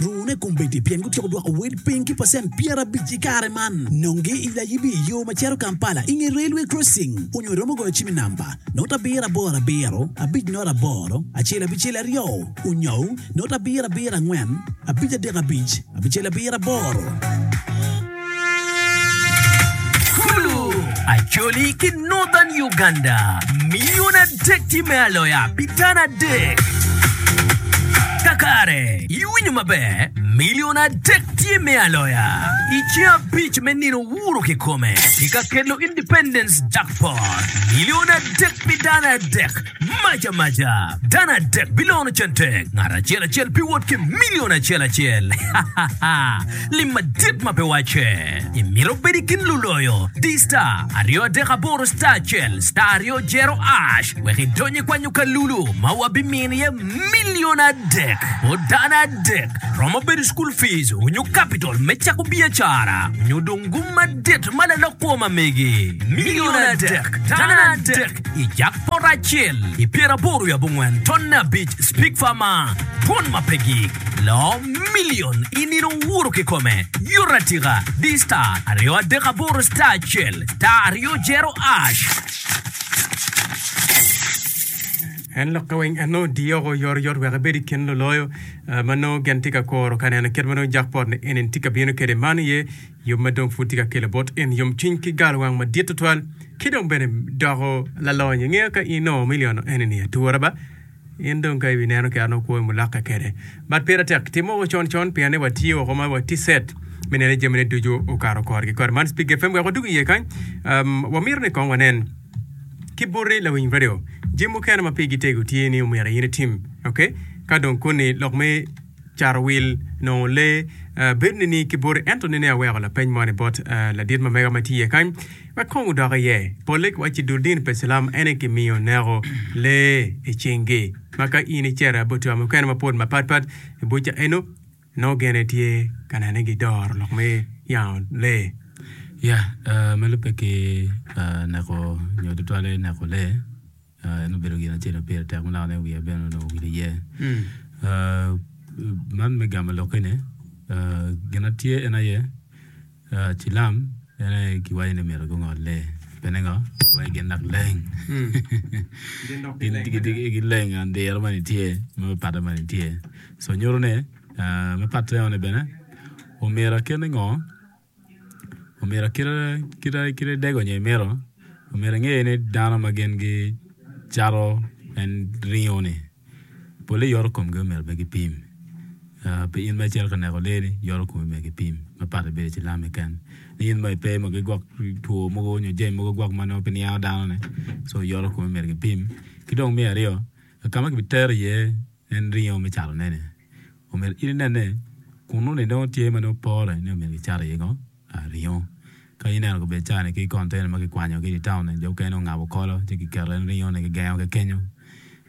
Rune kombeddi pien gutyeko dwoko wel piny ki pacent pyerabic i kare man. Nonge i layibi i yo ma cito Kampala i nge Railway Crossing onyo iromo goyo cim i namba, not abiro aboro abiro, abic not aboro, acel abicel aryo, onyou, not abiro abiro angwen, abic adek abic, abicel abiro aboro. Kulu, Acholi ki Northern Uganda, milion adek tye me aloya pi dano adek. Kakare, iwinyo maber, milion adek tye me aloya. I ceng abic me nino wuro kikome, ki ka kelo Independence Jackpot, milion adek pi dano adek. Mac amaca, dano adek bilono cente, ngat acel acel biwot ki milion acel acel. Lim madit ma pe wacce! Imito bedi kin luloyo? Di star aryo adek aboro star acel star aryo jero ash wek idony i kwanyo kalulu ma wabimino iye milion adek o dano adek. Romo bedo school fees onyo capital me cako biacara onyo dong gum madit ma lalok kwo ma megi. Milion adek, dano adek. I jab poto acel i pyeraboro wi abongwen tonne abic spigfa ma twon ma pe gi loo milion i nino owuro kikome yuto atika di star aryo adek aboro star acel star aryo jero ash. En lokke weng en nongo diyo oko oyotoyot wek ebed i kin luloyo ma nongo gin tye ka kuro ka neno kit ma nongo jakpot ni eni tye ka bino kwede. Man aye Yom ma dong pud tye ka kelo bot en yomcwiny ki galowang madit tutwal, ki dong bene doko lalony. Ingeyo ka in ongo miliono enini atura ba, in dong ka ibi neno kera nongo kwo i mulokke kede. But pire tek timo woko con con pien ni watye woko ma watye set me neno ni jami ne ducu okato korgi kore. Man Speak FM wek wadug iye kany. Um, wamito ni kong wanen ki buti lawiny radio jami mukene ma pigi tego tye ni omyero in itim, okay? Ka dong koni lok me Carowil nongo lee bedo nining ki boti? Ento nene aweko lapeny moni bot ladit mamega ma tye iye kany wek kong wudok iye. Polle giwacci dul dini pa Icilam aye kimiyo neko lee i cingi, ma ka in icito i buca mukene mapol mapatpat i buca eno, nongo gin aye tye ka neno ni gidoro lok me yango lee. Ya, ma lubbe ki neko nyo tutwalle neko lee. En obedo gin acel ma pire tek ma dano niang wiye bene onongo owil iye. Man me gamo lokkene, gin ma tye en aye cilam en aye kiwaco ni myero gungol lee. Pien ni ngo? Wai gin dok leng. Gileng and diro moni tye ma me patte moni tye. So nyuto ni me patte moni bene omyero kit ni ngo? Omyero kite dego nyo imito omyero inge ni dano ma gin gicato en ringo ni pole yoto komgi omyero bene gipim pi in ma icito ka neko lee ni yoto komi myero gipim ma padi bedo cilam keken ni in ma ipe ma gigwok two mogo nyo jami mogo gwok ma nongo pe niango dano ni so yoto komi myero gipim ki dong me aryo ka ma kibiteri iye En ringo me catoneni. Omyero in inene kunnu ni nongo tye ma nongo pore ni omyero kicat iye ngo? Ah, ringo. Ka ineno kobed caa-ni ki container ma kikwanyo ki i taun-ni, jo mukene nongo ngabo kolo ci kiketo en ringo ni kigengo ki kenyo.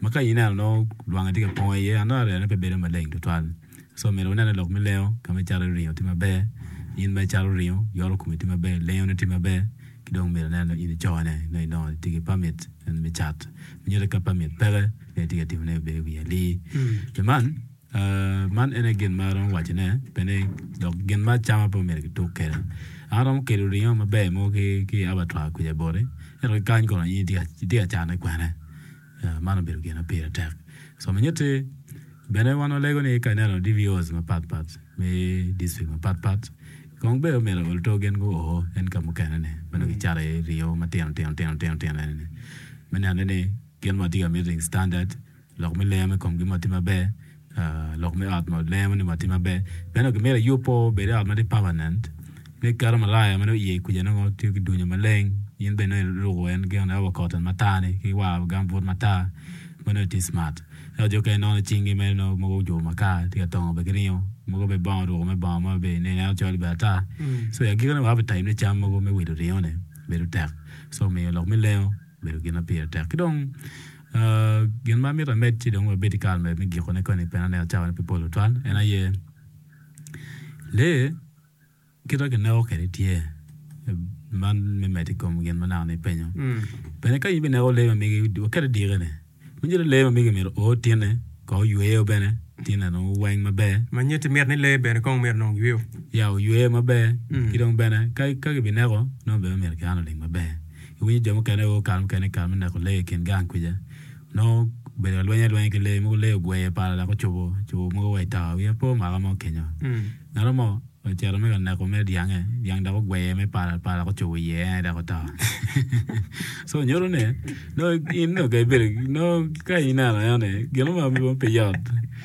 Ma ka ineno nongo lwangi tye ka pongo iye, ano aryane pe bedo maleng tutwal. So omyero wunene lok me lengo ka me cato ringo tye maber, in ma icato ringo, yoro komi tye maber, lengoni tye maber. Ki dong myero inen dong in icone nongo idongo itye ki pamit me cat me nyuto ka pamit peke nongo itye ka timone obedo wi ali. Pi man man en aye gin ma aromo wacone pien dok gin me acama pe omyero kituk kwede. An aromo kelo ringo maber mogo ki abatwa kwija boti ento ki kany kono in itye ka cane kwene. Man obedo gin ma pire tek somo nyutti. Bene wan walego ni ka ineno DVOs mapat pat me district mapat pat kong bed omyero oluto gin gu o en ka mukene ni ma nongo gicato iye ringo matino tino tino tino tino eni ni me nene ni gin ma watye ka miti standard lok me lengo me komgi ma tye maber. Lok me ot ma lengo ni watye maber. Meno dong gimito iyub pe obed i ot ma tye permanent. Ni keto malaya ma dong iye kuca nongo tiyo ki dunya maleng in bene nongo iruko en gin ma wa cotton matar-ni ki wa gambut matar ma nongo itye cimat. Ento jo mukene nongo cingi mere nongo mogo ojuko makar tye ka tongo bene ki ringo, mogo bene bongo oruko mere bongo ma bene ineno ineno col bene ata. So i agikine wa appetite me cam mogo me wilo ringo-ni bedo tek. So omiyo lok me lengo obedo gin ma pire tek. Ki dong. Gin ma amito amed ci dong wabed ki kare me gikone koni pe aneno cawa ne pe pol tutwal en aye lee kit ma kineko kwede tye man me medo i kom gin ma naka ni ipenyo bene ka in bineko lee ma mege waket i dikeni macalo lee ma mege myero oo tinne kong oyweyo bene tinne dong oweng maber ma nyo ti miti ni lee bene kong myero nong oyweyo ya oyweyo maber ki dong bene ka kibineko nongo bene myero kian olim maber Iwinyo jo mukene aye kare mukene i kare me neko lee i kin gang kwica nongo obedo ka lweny alwenya ki lee mogo lee ogweye pala dok ocubo cubo mogo wa i tower wiya pe omaka mo kenyo ngatomo mo ocito me ka neko mere dyange dyang dok ogweye me pala pala dok ocubo iye en aye dok oto so nyuto ni nongo in nongo ka ibedo nongo ka ineno eno ni gino ma pe yot.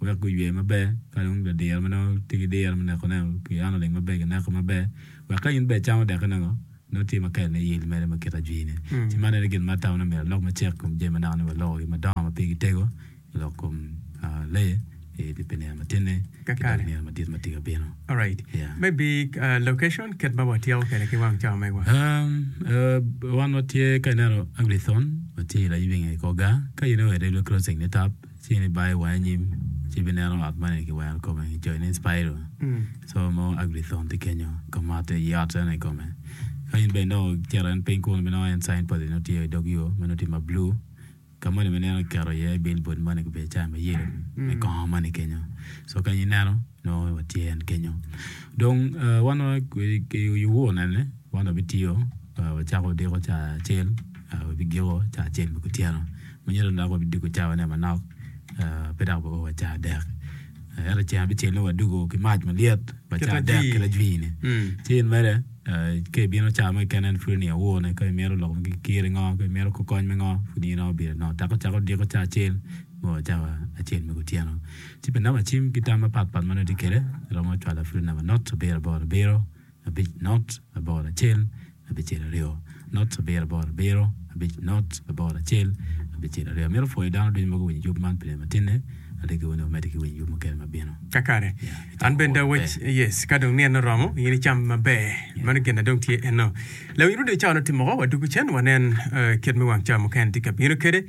wek guywe maber ka dong ladiro ma nongo tye ki diro me neko ne pi an oling maber gineko maber wek ka in bene icamo dekke ne ngo nongo tye ma kelone yel mere ma kite ajwini ci man aye gin ma atamo ni omyero walok macek i kom jami ma naka walukogi madongo ma pigi tego i lok kom lee i pi nino matidi ki dong nino madit ma tye ka bino. Alright. Yeah. Maybe uh, location kit ma watyeko kwede ki wang cawa megwa. Um, uh, wan watye ka ineno Agri-thon, watye i Layibinge i Koga, ka in iwere i Blue Crossing ni tap, ci ni bayo wange anyim ci ibineno ot moni kiwero kome ki coyo ni Inspiral so nongo Agri-thon tye kenyo ka matte i ot eno i kome. Ka in bene dong icito en piny kunu ibinongo en sign post nongo tye i dog yo ma nongo tye ma blue ka moni ma ineno kiketo iye billboard moni gubedo cawa ma yelo me kongo moni kenyo so ka in ineno nongo wa tye en kenyo dong wan wa ki owonene wan wabitiyo wacako odiko ca acel wabigiko ca acel me kutyeno Myero dok wabidwogo cawane manok, pe dok wa o wa caa dek. Ento ceng abicel nongo wadwogo ki mac malyet pa caa dek ki lajwini. Ci in mere, ka ibino caa mo keken en pud oniang awone ka imito lok me kir i ngo, ka imito kor kony me ngo, pud in nongo ibino nongo teke ocako odyeko caa acel ma wa cawa acel me kutyeno. Ci pi namba cim ki tam mapat pat ma nongo itye kede, iromo cwala pud i namba nut abiro aboro abiro. abic nut labor acel abicel aryo nut abiro aboro abiro abic nut labor acel abicel aryo amito pwoyo dano ducu ma guwinyo yub man pi lim atinne alegi wene wamedi ki winyo yub mukene ma bino. Kakare. An bene da wec yes ka dong nino romo in icam maber. Mano gin na dong tye eno. Lawiny Rudy Ocao noti moko wa dugu cen wanen kit me wang cawa mukene tye ka bino kede.